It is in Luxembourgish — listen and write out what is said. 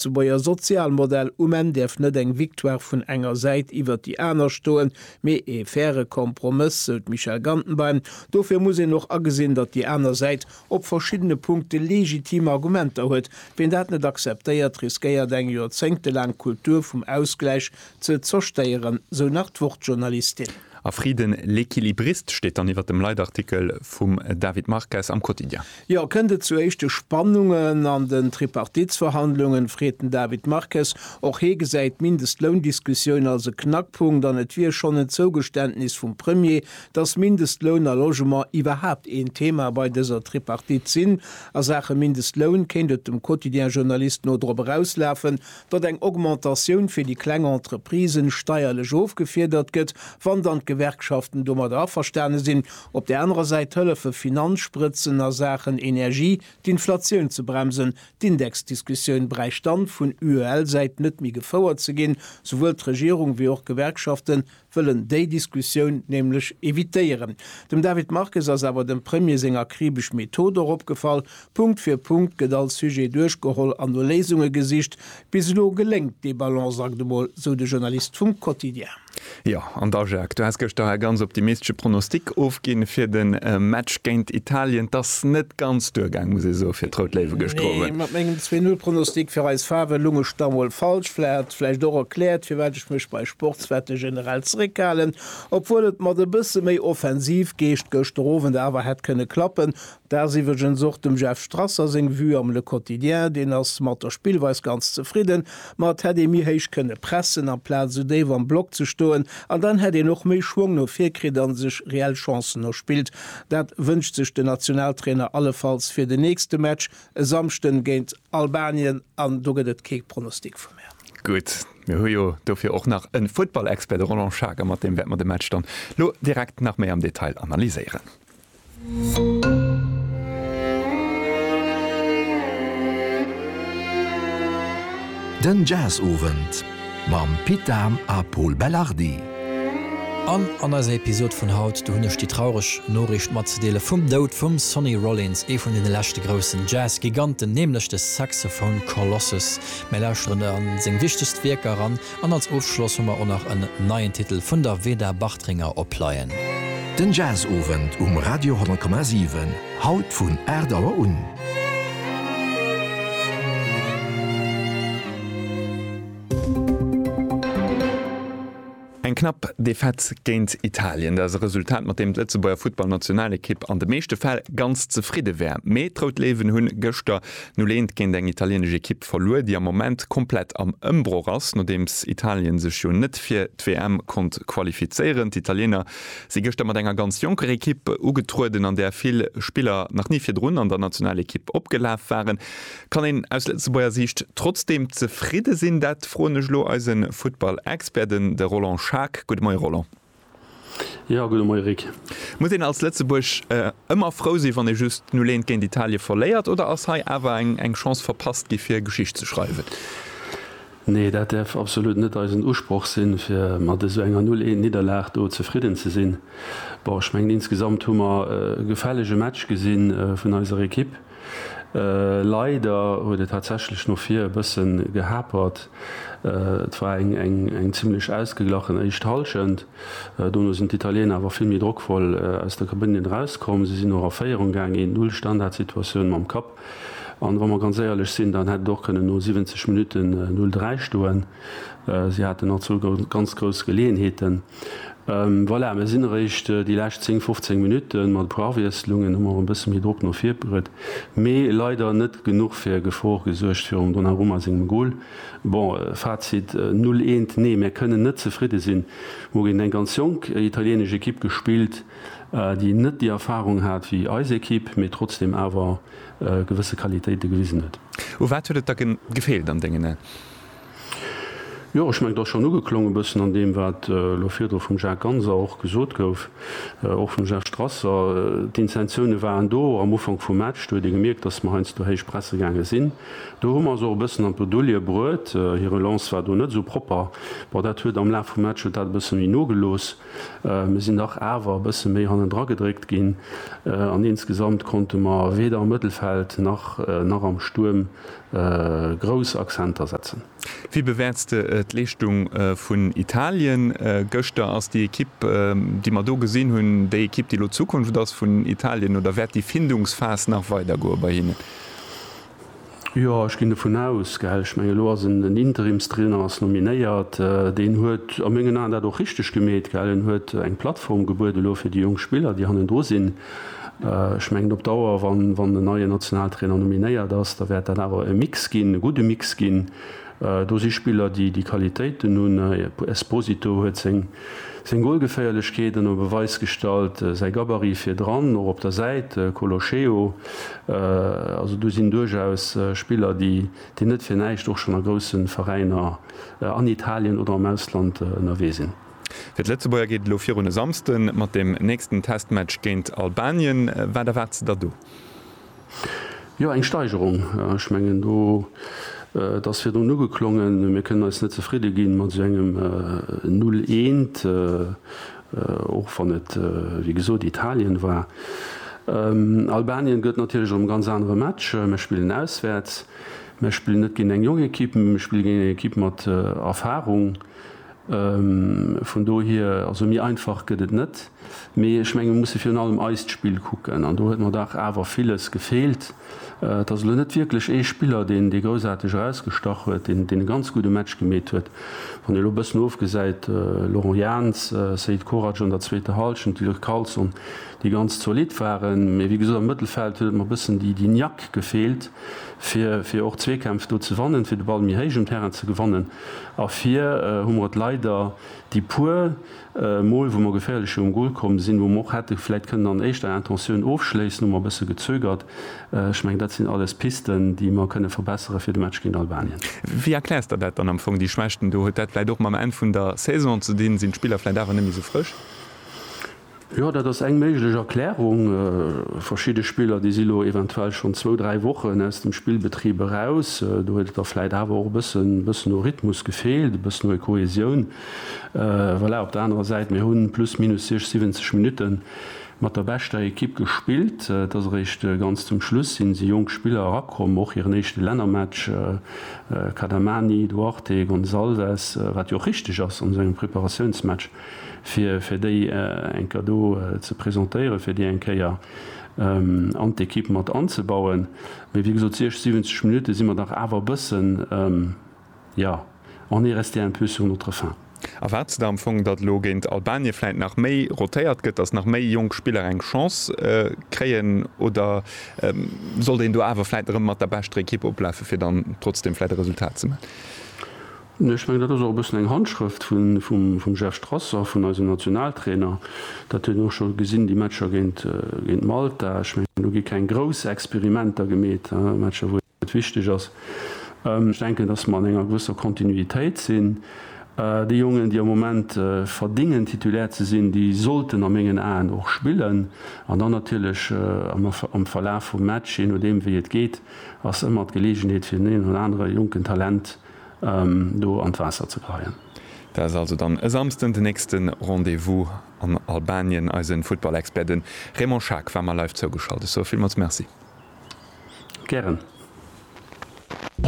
Lëtzebuerger Sozialmodell, um Enn däerf net eng Victoire vun enger Säit iwwert déi aner stoen, mee ee faire Kompromëss, sou d'Michèle Gantenbein. Dofir muss een och agesinn, datt déi aner Säit op verschiddene Punkte legitim Argumenter huet. Ween dat net akzeptéiert, riskéiert eng joerzéngtelaang Kultur vum Ausgläich ze zerstéieren, sou nach d'Wort-Journalistin. A Frieden, L'Equilibriste steet dann iwwer dem Leitartikel vum David Marques am Quotidien. Jo, kënnt et zu éischte Spannungen an den Tripartitsverhandlungen, freet den David Marques. Och hie gesäit d'Mindestloundiskussioun als e Knackpunkt an et wier schonn en Zougeständnis vum Premier, datt Mindestloun a Logement iwwerhaapt een Thema bei dëser Tripartite sinn. A Saache Mindestloun kéint et dem Quotidien-Journalist no drop erauslafen, datt eng Augmentatioun fir déi kleng Entreprisen steierlech ofgefiedert gëtt, wann dann d'Gewerkschaften domadder averstane sinn, op där anerer Säit hëllefe Finanzsprëtzen a Saachen Energie d'Inflatioun ze bremsen. D'Indexdiskussioun bräicht dann vun UEL-Säit net méi gefouert ze ginn, souwuel d'Regierung wéi och d'Gewerkschaften wëllen déi Diskussioun nämlech evitéieren. Dem David Marques ass awer dem Premier seng akribesch Method och opgefall, Punkt fir Punkt gëtt all Sujet duerchgeholl an no Léisunge gesicht. Bis elo geléngt dee Balanceakt emol, sou de Journalist vum Quotidien. Jo, an da Jacques, du has gëschter e ganz optimistesche Pronostic ofginn fir de Match géint Italien. 't ass net ganz duergaang, muss ee soen, fir d'Rout Léiwe gëschter Owend. Nee, mat mengem Zwee-Null-Pronostic fir eis Faarwen lung ech da mol falsch. Vläicht hat et vläicht och erkläert, firwat. Ech mécht bei Sportswette generell zeréckhalen, obwuel et mat e bësse méi Offensivgeescht gëschter Owend awer hätt kënne klappen. Dat ass iwwregens och dem Jeff Strasser seng Vue am Le Quotidien. Deen ass mat der Spillweis ganz zefridden, ma et hätt ee méi héich kënne pressen, amplaz esou déif am Block ze stoen. An dann hätt een och méi Schwong no vir kritt a sech reell Chancen erspillt. Dat wënscht sech den Nationaltrainer allefalls fir den nächste Match e Samschden géint Albanien. An do gëtt et kee Pronostic vu mär. Gutt, Mir hu jo dofir och nach en Futtballexpert, de Roland Schager, mat deem wäerte mer de Match dann lo direkt nach méi am Detail analyséieren. Den Jazzowend mam Pit Dahm a Pol Belardi. An an eiser Episode vun haut, do hunn ech déi traureg Noriicht matzedeele vum Doud vum Sonny Rollins, ee vun deene leschte groussen Jazz-Giganten, nämlech de Saxophone Colossus Mir lauschteren a seng wichtegst Wierker eran an als Ofschloss hu mer och nach en neien Titel vun der Veda Bartringer op Pleien. Den Jazzowend um Radio 10,7, haut vun 8 Auer un. Eng knapp Defaite géint Italien, dat ass e Resultat, mat deem d'Lëtzebuerger Futtballnationalekipp an de meeschte Fäll ganz zefridde wär. Mee d'Rout Léiwen hunn gëschter 0 Eent géint eng italienesch Ekipp verluer, déi am Moment komplett am Ëmbroch ass, nodeems Italien sech jo net fir d'WM konnt qualifizéieren. D'Italiener si gëschter mat enger ganz jonker Ekipp ugetrueden, an där vill Spiller nach ni virdrun an der Nationalekipp opgelaf waren. Kann een aus Lëtzebuerger Siicht trotzdeem zefridde sinn? Dat froen ech elo eise Futtball-Expert, den de Roland Schaack. Gudde Moie Roland. Jo, gudde Moie Rick. Muss een als Lëtzebuerg ëmmer frou sinn, wann ee just 0, 1 géint Italie verléiert oder ass hei awer eng Chance verpasst gi fir Geschicht ze schreiwen? Nee, dat däerf absolut net eisen Usproch sinn, fir mat esou enger 0, 1 Nidderlag do zefridden ze sinn. Bon, ech mengen insgesamt hu mer e gefällege Match gesinn vun eiser Ekipp. Leider huet et tatsächlech no vir e bësse gehapert. Et war eng zimmlech ausgeglachen éischt Hallschent. Dono sinn d'Italiener awer vill méi drockvoll aus der Kabënne erauskomm. Si sinn och a Féierung gaangen, een, Null Standardsituatioun mam Kapp. An wa mer ganz éierlech sinn, dann hätt et och kënnen no 70 Minutten 0, 3 stoen. Si haten all zwou ganz grouss Geleeënheeten. Voilà, mir sinn eréischt déi lescht 10, 15 Minutten. Mat e puer Awiesslungen hu mer e bësse méi Drock no vir bruet, mee leider net genuch fir Gefor gesuergt virum Donnarumma sengem Gol. Bon, Fazit, Null eent, nee, mir kënnen net zefridde sinn. Mir hu géint eng ganz jonk italieenesch Ekipp gespillt, déi net déi Erfarung hat wéi eis Ekipp, mee trotzdeem awer gewësse Qualitéite gewisen huet. U wat huet et da gefeelt an dengen Aen? Jo, ech mengen, et ass schonn ugeklongen, e bëssen an deem, wat elo virdru vum Jacques Ganser och gesot gouf, och vum Serge Strasser. D'Intentiounen waren do. Am Ufank vum Match, do huet ee gemierkt, datt mer heiansdo héich presse gaange sinn. Do hu mer eis och e bëssen an d'Bredouille bruet. Hir Relance war do net esou propper. Bon, dat huet am Laf vum Match huet dat e bësse méi nogelooss. Mir sinn dach awer e bësse méi hannendra gedréckt ginn an insgesamt konnte mer weder am Mëttelfeld nach am Stuerm grouss Accenter setzen. Wéi bewäerts de d'Leeschtung vun Italien gëschter? Ass déi Ekipp, déi mer do gesinn hunn, déi Ekipp, déi elo d'Zukunft ass vun Italien, oder wäert déi Findungsphas nach weidergoe bei hinnen? Jo, ech ginn dovun aus, gell. Ech mengen, elo ass en den Interimstrainer ass nominéiert. Deen huet a mengen Aen dat och richteg gemeet, gell. En huet eng Plattform gebuede lo fir déi jonk Spiller, déi hannendru sinn. Ech mengen op Dauer, wann en neien Nationaltrainer nominéiert ass, da wäert dat awer e Mix ginn, e gudde Mix ginn. Do si Spiller, déi déi Qualitéiten hunn. Esposito huet seng Golgeféierlechkeet ënner Beweis gestallt, säi Gabarit virdran, och op der Säit. Colocheo, also do sinn duerchaus Spiller, déi net fir näischt och schonn a grousse Veräiner an Italien oder am Ausland ënnerwee sinn. Fir d'Lëtzebuerger geet et elo virun e Samsde mat dem nächsten Testmatch géint Albanien. Wat erwaarts de der do? Jo, eng Steigerung. Ech mengen, do, et ass virdrun ugeklongen, mir kënnen eis net zefridde gi mat esou engem Null eent, och wann et, wéi gesot, Italien war. Albanien gëtt natierlech erëm e ganz anere Match. Mir spillen auswäerts, mir spillen net géint eng jonk Ekipp, mee mir spille géint eng Ekipp mat Erfarung. Vun dohier, also méi einfach gëtt et net. Mee ech menge mir musse virun allem eist Spill kucken an do huet mer dach awer villes gefeelt. Et ass elo net wierklech ee Spiller, deen dee groussaarteg erausgestach huet, deen deen e ganz gudde Match gemeet huet. Wann ee elo e bëssen ofgesäit, Laurent Jans, Seid Korac an der zweeter Halschent, Dilr Carlson, déi ganz zolidd waren. Mee wéi gesot am Mëttelfeld huet et mer e bëssen déi déi Niack gefeelt fir fir och Zweekämpf do ze wannen, fir de Ball méi héich um Terrain ze gewannen. A vir hu mer et leider déi puer Mol, wou mer geféierlecher um Gol komm sinn, wou mer och hätte vläicht kënnen an éischter Intentioun ofschléissen, hu mer e bësse gezögert. Ech mengen, dat sinn alles Pisten, déi mer kënne verbessere fir de Match géint Albanien. Wéi erkläers Der dat dann am Fong, déi Schwächten do? Huet dat vläicht och mam Enn vun der Saison ze dinn? Sinn d'Spiller vläicht awer net méi esou frësch? Jo, dat ass eng méiglech Erklärung. Verschidde Spiller, déi si lo eventuell schonn zwou, dräi Wochen aus dem Spillbetrib eraus. Do huet et da vläit awer och e bëssen, bëssen u Rhythmus gefeelt, e bëssen u Kohäsioun. Voilà, op der anerer Säit, mir hu plus minus 60, 70 Minutte mat der beschter Ekipp gespillt. Et ass eréischt ganz zum Schluss sinn, si jonk Spiller erakomm, och hiren éischte Lännermatch, Cadamani, Duarte, Gonçalves, wat jo och richteg ass an esou engem Preparatiounsmatch. fir fir déi enker do ze presentéieren, fir déi eng Kéier an d'Ekipp mat anzebauen. Mee wéi gesot, 60, 70 Minutte si mer dach awer e bëssen, jo, on est resté un peu sur notre faim. Erwaarts de da am Fong, datt elo géint Albanien vläit nach méi rotéiert gëtt, datt nach méi jonk Spiller eng Chance kréien? Oder sollt een do awer vläit erëm mat der beschter Ekipp oplafen, fir dann trotzdeem vläit e Resultat ze maachen? Ech mengen, dat ass och e bëssen eng Handschrëft vum Jeff Strasser, vun eisem Nationaltrainer. Dat huet een och scho gesinn, déi Matcher géint Malta. Ech mengen, do gi keng grouss Experimenter gemeet, Matcher, wou et wichteg ass. Ech denken, datt mer an enger gewësser Kontinuitéit sinn. Déi Jongen, déi am Moment verdéngen, Titulaire ze sinn, déi sollten a mengen Aen och spillen. An dann natierlech am Verlaf vum Match, jee nodeem, wéi et geet, ass ëmmer d'Geleegenheet fir den een oder anere jonken Talent, do an d'Waasser ze kreien. Dat ass also dann e Samsden den nächste Rendez-vous an Albanien. Eise Futtballexpert, de Raymond Schaack, war mer live zougeschalt. Ech soe villmools Merci. Gären.